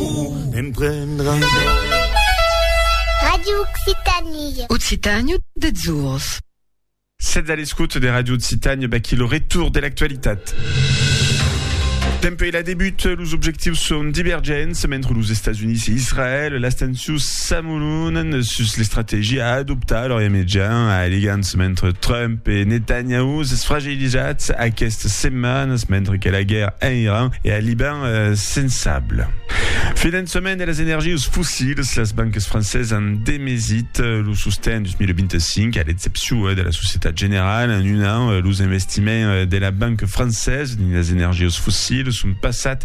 Ou em prendras. Radio Occitanie. Occitània des ors. Sètz a l'escòt de Radio Occitània, vaquí lo retour de l'actualitat. Dempuèi la debut, los objectius son divergents mentre los Estats Units e Israèl. Las tensions s'amolonan sus l'estrategia a adoptar a l'Orient Mejan, alegants mentre Trump e Netanyahu s'esfragelhan. Desatz aquestes setmanes mentre que la guèrra en Iran e al Liban sensable. Finançament de las energius fossils, las banques francesas an demesit lo sosten 2025, a l'excepcion de la Societat Generale. En un an, los investiments de la banca francesa dins las energius fossils son passat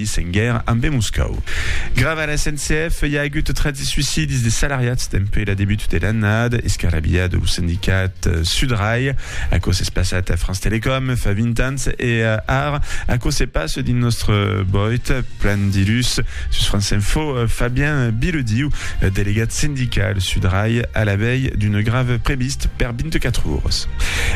Paris, Senguer, ambe e Moscau. Grava la SNCF, i a agut 13 suïcidis de salariats dempuèi la debut de l'annada, escarrabilhat lo sindicat Sudrail. Aquò s'es passat a France Télécom fa 20 ans e ara aquò se passa dins nòstre boit plan dilhus. Sus France Info, Fabien Bilediu, delegat sindical Sudrail a la vei d'una grèva previst per 24 oras.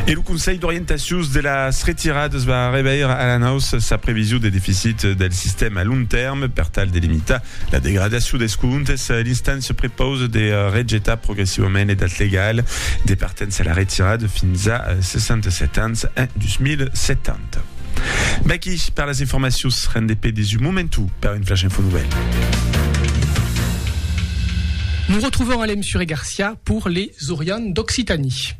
E lo Conselh d'orientacius de las retiradas va reveir a la naus sa prevision de deficit del sistèma a long tèrme per tal de limitar la degradacion dels comptes. L'instància prepausa de rejetar progressivament l'edat legala de partença a la retirada fins a 67 ans en 2070. Vaqui per las informacions, rendez pe des un momentu per un flash info nouvèl. Nous retrouvons Alem Suré-Garcia pour les Orients d'Occitanie.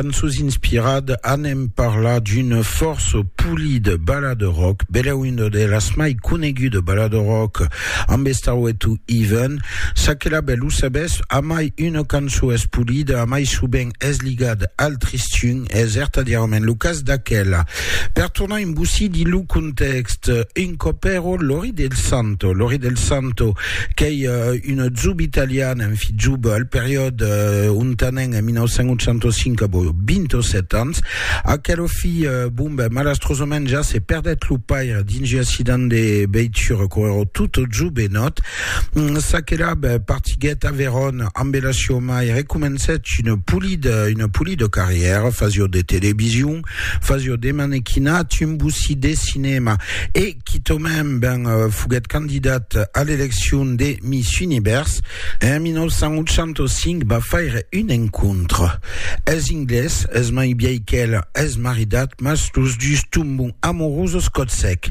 cançons inspirades anem parlar d'une force polida balade rock bela una de las mai coneguda balade rock amb Starway to Even sa que la belle ho sabes a mai una cançó es polida a mai sovent es ligada al tristun es certadièrament lo cas d'aquela Per tornar en bossí di lo contèxt, un còp ero Lori del Santo. Lori del Santo qu'ei una zub italiana, un fit zub al periòde ontanenc en 1985, abo 27 ans. Aquelo fit, bon ben, malastrosament ja se perdèt lo paire dins un accident de veitura, quò ero tot zub e nòt. Çaquelà, ben, partiguèt a Veron ambe la siò mair e comencèt una polida, una polida carrièra, fasiò de television, Fazio de manequina, tumbusi de cinèma e quitòmèn ben foguèt candidat a l'eleccion de Miss Univers en 1985 va faire un encontre es inglés es mai biei qu'el es maridat mas los dus tombon amorosos còt sec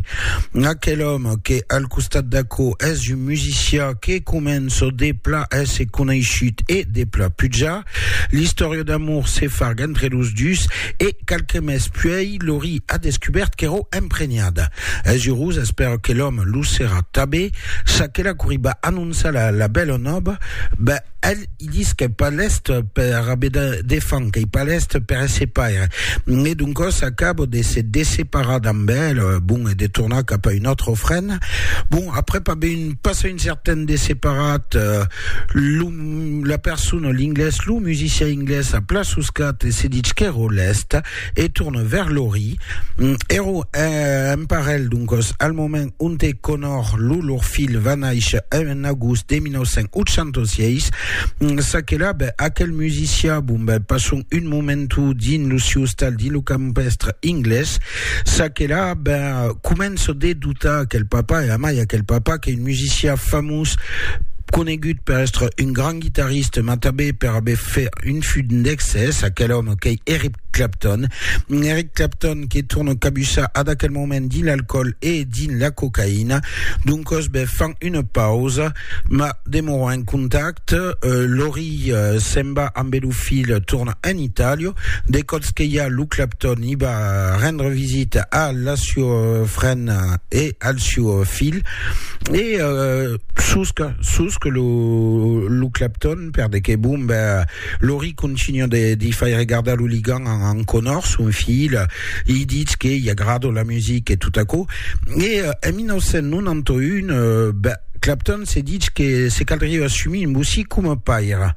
aquel òme que al costat d'aquò es un musicià que començo de pla èsser coneishut e de pla pujar L'istòria d'amor se farg entre los dus e qualque mes puèi Lori a descubèrt qu'èro emprenhada. Es urós, espèra que l'òme lo serà tabé. Ça que la coriba anonça la la bèla nòba, ben el i dis qu'ei pas lèst per aver de de fam, qu'ei pas lèst per èsser paire. E doncòs acaba de se desseparar damb el, bon, e de tornar cap a un autre ofrena. Bon, aprèp aver un passa un certain desseparat, lo. la persona, l'inglés, lo musician inglés a pla soscat e se ditz qu'èro lèst e torna vers Lori. Èro eh, un parelh, doncos, al moment onte Connor, lo lor filh, va nàisher en agost de 1986. Ça que là, ben, aquel musician, bon, ben, passon un momentu dins lo siu ostal dins lo campestre inglés, Ça que là, ben, començo de doutar aquel papa, e amai aquel papa, qu'ei un musicià famós, conegut per èstre un grand guitarriste, mas tanben per aver fait un fut d'excès, aquel òme qu'ei Eric Clapton. Eric Clapton que torno cabussar ad aquel moment dins l'alcoòl e dins la cocaïna. Doncòs, ben, fan una pausa. Ma demora en contact, Lori se'n va ambe lo filh torna en Italia, de còps que i a lo Clapton i va rendre visita a la siua frena e al siu filh e susca susca lo Clapton per de que bon ben Lori continua de li fai regardar lo ligan en enconhor, son filh li ditz que i agrada la musica e tot aquò, e en 1991, ben, Clapton se ditz que se caldriá assumir un bossí coma paire.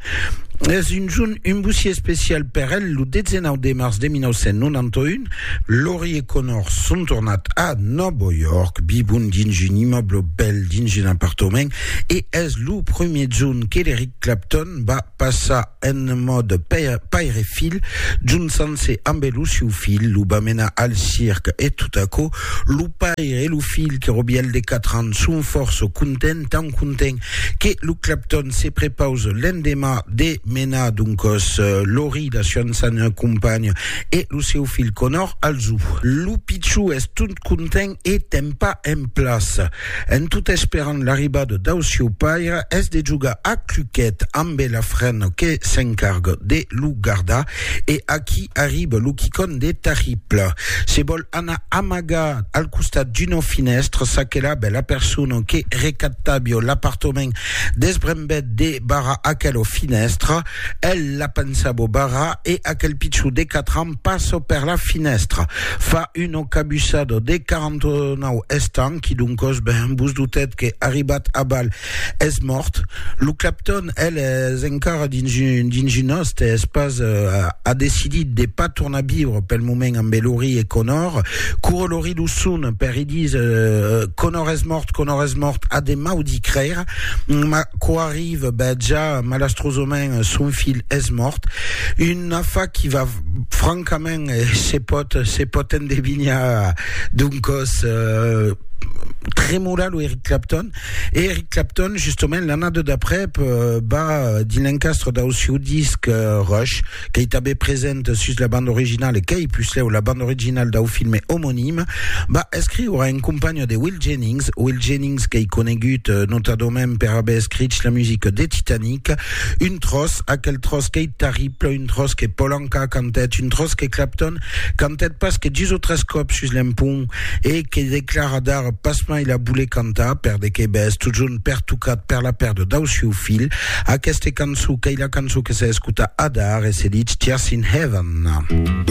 Es un jorn, un bossí especial per el, lo 19 de març de 1991, Lori e Conor son tornat a Nòva York, vivon dins un immòble bèl, dins un apartament, e es lo premier jorn que l'Eric Clapton va passa en mòde paire-filh, jonçant-se ambe lo siu filh, lo va menar al circ e tot aquò, lo paire e lo filh que Robièl de quatre ans son fòrça contents, tant contents que lo Clapton se prepausa l'endemà de menar doncas Laurie, la siá ançana companha, e lo siu filh Connor al zoo. Lo pichon es tot content e tempa en plaça. En tot esperant l'arribada dau sieu paire, es de jogar a cluquet ambe la frena que s'encarga de lo gardar e aquí arriba lo quicon de Tarriple. Se vòl anar amagar al costat d'una finèstra s'aquela bèla persona que recaptabia l'apartament desbrembèt de barrar aquela finèstra, el la pensava barrar e aquel pichó de quatre ans, Passo per la finèstra. Fa un ocabussado de 49 estants, quidoncos ben vos dotèt que, arribat a balh, es mòrt. Lo Clapton, el, es encara dins un, dins un òste, es pas, a decidit de pas tornar viure pel moment ambe Laurie e Conor. Coure Laurie lo son per i dis, Conor es mòrt, Conor es mòrt, a de mau d'i crèire, ma quò arrive, ben ja, malastrosament, son filh es mòrt. Un. un afa qui va francament eh, se pot se pot endevinhar d'un còs eh, tremolar lo Eric Clapton e Eric Clapton justement l'annada d'après eh, va dins l'encastre dau sieu disc eh, Rush qu'ei tanben present sus la banda originala qu'ei puslèu la banda originala dau filme omonime va escriure en companha de Will Jennings Will Jennings qu'ei conegut eh, notadament per aver escrich la musica de Titanic Un tròç, aquel tròç qu'ei tarrible, un tròç que Paul Anka cantèt, un tròç que Clapton cantèt pas que dus o tres còps sus l'empont e que declara d'ara pasmai la voler cantar, per de qué bèth, totjorn pertocat per la pèrda dau sieu filh. Aquesta cançó qu'ei la cançó que se escota adar e se ditz Tears in Heaven.